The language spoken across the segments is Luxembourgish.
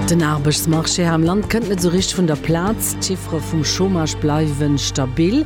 Den Aarbechtsmarché hei am Land kënnt net esou richteg vun der Plaz. D'Chiffere vum Chômage bleiwe stabil,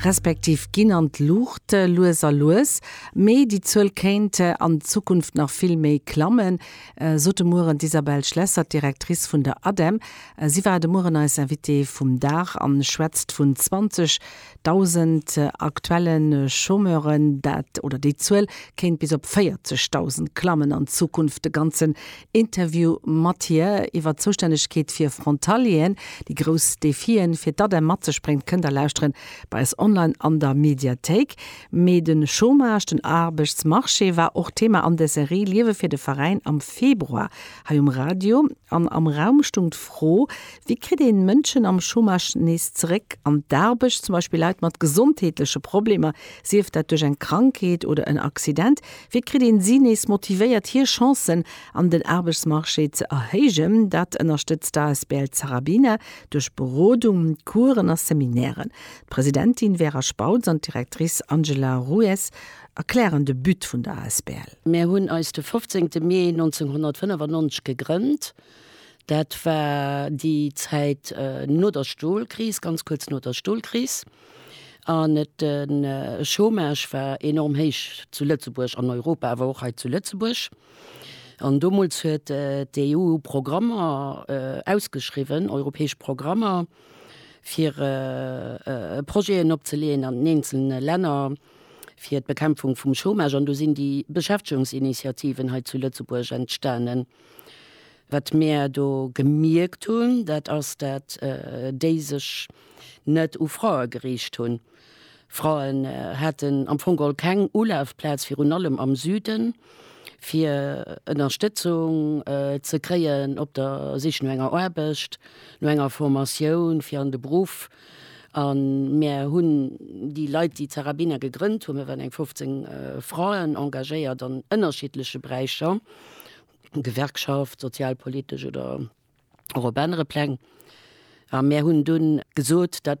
respektiv ginn an d'Luucht, lues a lues. Mee déi Zuel kéint an Zukunft nach vill méi klammen, sot de Mueren d'Isabelle Schlesser, d'Directrice vun der ADEM. Si war de Mueren eis Invitée vum Dag an schwätzt vun 20 Dausend aktuelle Chômeuren, dat oder déi Zuel kéint bis op 40.000 klammen an Zukunft. De ganzen Interview mat hir iwwer d'Zoustännegkeet fir Frontalieren, déi grouss Defien, fir d'ADEM mat sech bréngt, kënnt der lauschteren bei eis online an der Mediathéik. Mee de Chômage, den Aarbechtsmarché war och Thema an der Serie Liewe fir de Veräin am Februar hei um Radio. An am Raum stung d'Fro, Wéi kritt een Mënschen am Chômage nees zeréck an d'Aarbecht, zum Beispill Leit mat gesondheetleche Problemer, sief dat duerch eng Krankheet oder en Accident? Wéi kritt een si nees motivéiert, hir Chancen an den Aarbechtsmarché ze erhéijen? Dat ënnerstëtzt d'asbl Zarabina duerch Berodung, Coursen a Seminairen. D'Presidentin Vera Spautz an d'Directrice Angela Ruiz erklären de But vun der asbl. Mär hunn eis de 15 Mee 1995 gegrënnt Dat war déi Zäit no der Stolkris, ganz kuerz no der Stolkris. An de Chômage war enorm héich zu Lëtzebuerg, an Europa, awer och hei zu Lëtzebuerg. An domols huet d'EU Programmer ausgeschriwwen, europäesch Programmer, fir Projeten opzeleeën an den eenzelne Länner fir d'Bekämpfung vum Chômage. An do sinn déi Beschäftegungsinitiativen hei zu Lëtzebuerg entstanen. Wat mir do gemierkt hunn, dat ass, dat déi sech net u Frae geriicht hunn. Fraen haten am Fong geholl keng Ulafplaz, virun allem am Süden, fir Ënnerstëtzung ze kréien op der Sich no enger Aarbecht, no enger Formatioun fir an de Beruff A mir hunn déi Leit, déi Zarabina gegrënnt hunn, mir waren eng 15 Fraen, engagéiert an ënnerschiddleche Beräicher, Gewerkschaft, sozialpolitesch oder och op anere Pläng. A mir hunn dunn gesot, dat.